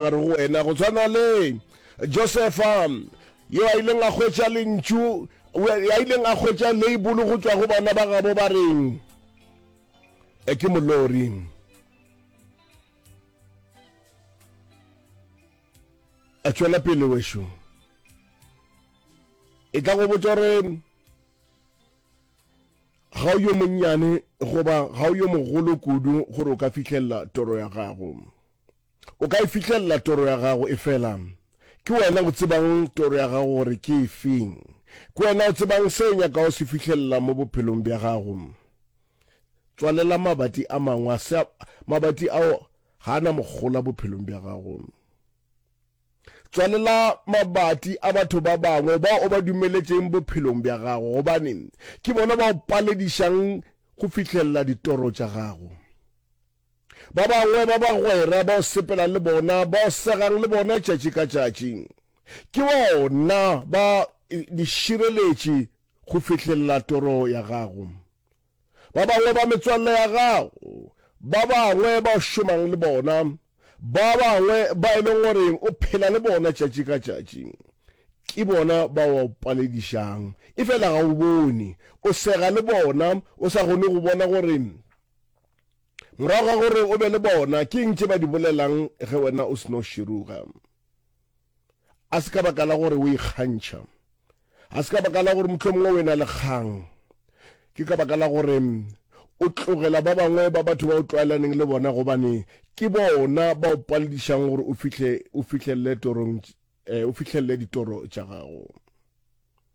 A re go wena, Go tshwana le Josefa, yo a ileng a hwetša lentšu, a ileng a hwetša leibolo go tšwa go bana ba gabo ba reng e ke molori. A tšwela pele wešo. E tla go botša gore ga o yo monnyane goba ga o yo mogolo kudu gore o ka fihlelela toro ya gago. O ka e fihlelela toro ya gago, efela ke wena o tsebang toro ya gago gore ke efe. Ke wena o tsebang se o nyakago se fihlelela mo bophelong bja gago. Tswalela mabati a mangwe a se, mabati ao ga a na mogola bophelong bja gago. Tswalela mabati a batho ba bangwe bao o ba dumeletšeng bophelong bja gago, gobane ke bona ba o paledišang go fihlelela ditoro tša gago. Ba bangwe ba bagwera bao sepela le bona, bao segang le bona tšatši ka tšatši, ke bona ba dišireletši go fihlelela toro ya gago. Ba bangwe ba metswalle ya gago, ba bangwe bao šomang le bona, ba bangwe ba e leng gore o phela le bona tšatši ka tšatši, ke bona ba o paledišang. Efela ga o bone, o sega le bona, o sa kgone go bona gore Morago ga gore o be le bona, ke eng tše ba di bolelang ge wena o seno širuga? A se ka baka la gore o ikgantšha. A se ka baka la gore mohlomongwe o e na le kgang. Ke ka baka la gore o tlogela ba bangwe ba batho ba o tlwaelaneng le bona gobane ke bona ba o paledišang gore o fihlelele ditoro tša gago.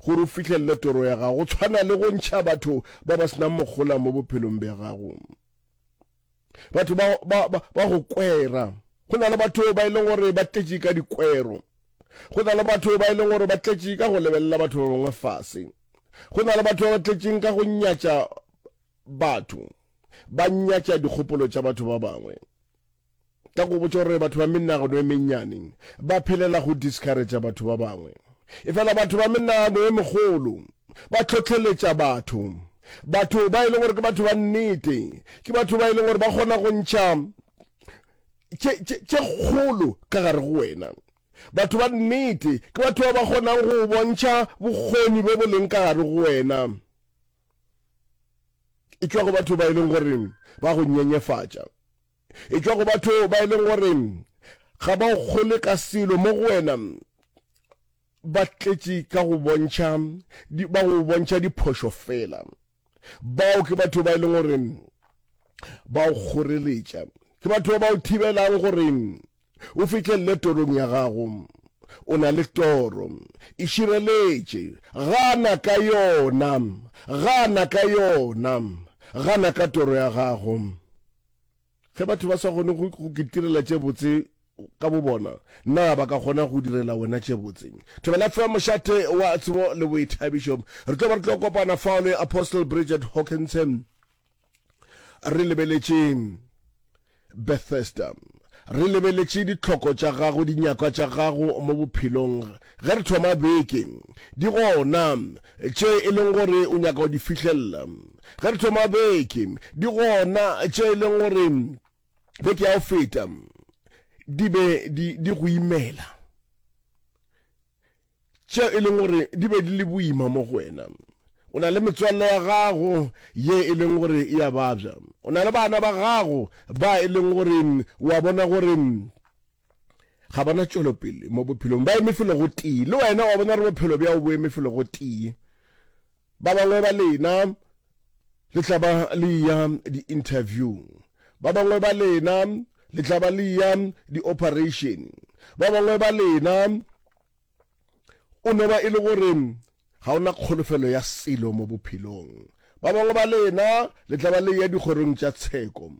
gore o fihlelele toro ya gago, go tshwana le go ntšha batho ba ba senang mogola mo bophelong bja gago. Batho ba, ba, ba, ba go kwera. Go na le batho ba e leng gore ba tletše ka dikwero. Go na le batho ba e leng gore ba tletše ka go lebelela batho ba bangwe fase. Go na le batho ba ba tletšeng ka go nyatša batho, ba nyatša dikgopolo tša batho ba bangwe. Ka go botša gore batho ba menagano e mennyane ba phelela go discourager batho ba bangwe, efela batho ba menagano e megolo ba hlohleletša batho. Batho ba e lego gore ke batho ba nnete ke batho ba e lego gore ba kgona go ntšha tše, tše, tše kgolo ka gare go wena. Batho ba nnete ke batho ba ba kgonang go bontšha bokgoni bjo bo leng ka gare go wena. e tšwa go batho ba e leng gore ba go nyenyefatša e tšwa go batho ba e leng gore ga ba o kgole ka selo mo go wena ba tletše ka go bontšha ba go bontšha diphošo fela bao ke batho ba e leng gore ba o kgoreletša ke batho ba o thibelang gore O fihlelele torong ya gago. O na le toro. E šireletše. Gana ka yona. Gana ka yona. Gana ka toro ya gago. Ge batho ba sa kgone go kitirela tše botse ka bobona, na ba ka kgona go direla wena tše botse? Thobela FM, mošate wa tsebo le boithabišo. Re tlo ba re tlo kopana fao le Apostle Bridget Hawkinson. re lebeletše bethesda re lebeletše ditlhoko tša gago dinyakwa tša gago mo bophelong ge re thoma beke di gona tše e leng gore o nyaka go di fihlelela ge re thoma beke di gona tše e leng gore beke ya go feta di be di go imela tše e leng gore di be di le boima mo go wena. O na le metswalle ya gago ye e leng gore e a babja. O na le bana ba gago ba e leng gore o a bona gore ga ba na tšwelopele mo bophelong, ba eme felo go tee. Le wena wa bona gore bophelo bjao bo eme felo go tee. Ba bangwe ba lena le tla ba le ya di-interviewng, ba bangwe ba lena le tla ba le ya di-operation, ba bangwe ba lena O no ba e le gore ga o na kholofelo ya selo mo bophelong. Ba bangwe ba lena le tla ba le ya dikgorong tša tsheko.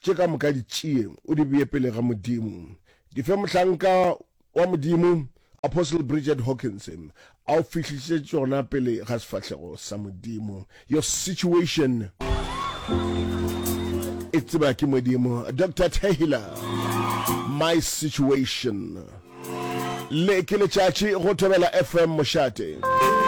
Tše ka moka di tšee, o di bee pele ga Modimo. Di fe mohlanka wa Modimo, Apostle Bridget Hawkins. A o fihlišitše tšona pele ga sefahlego sa Modimo. Your situation e tseba ke Modimo. Doctor Taylor, my situation. Le ke letšatši go Thobela FM Mošate.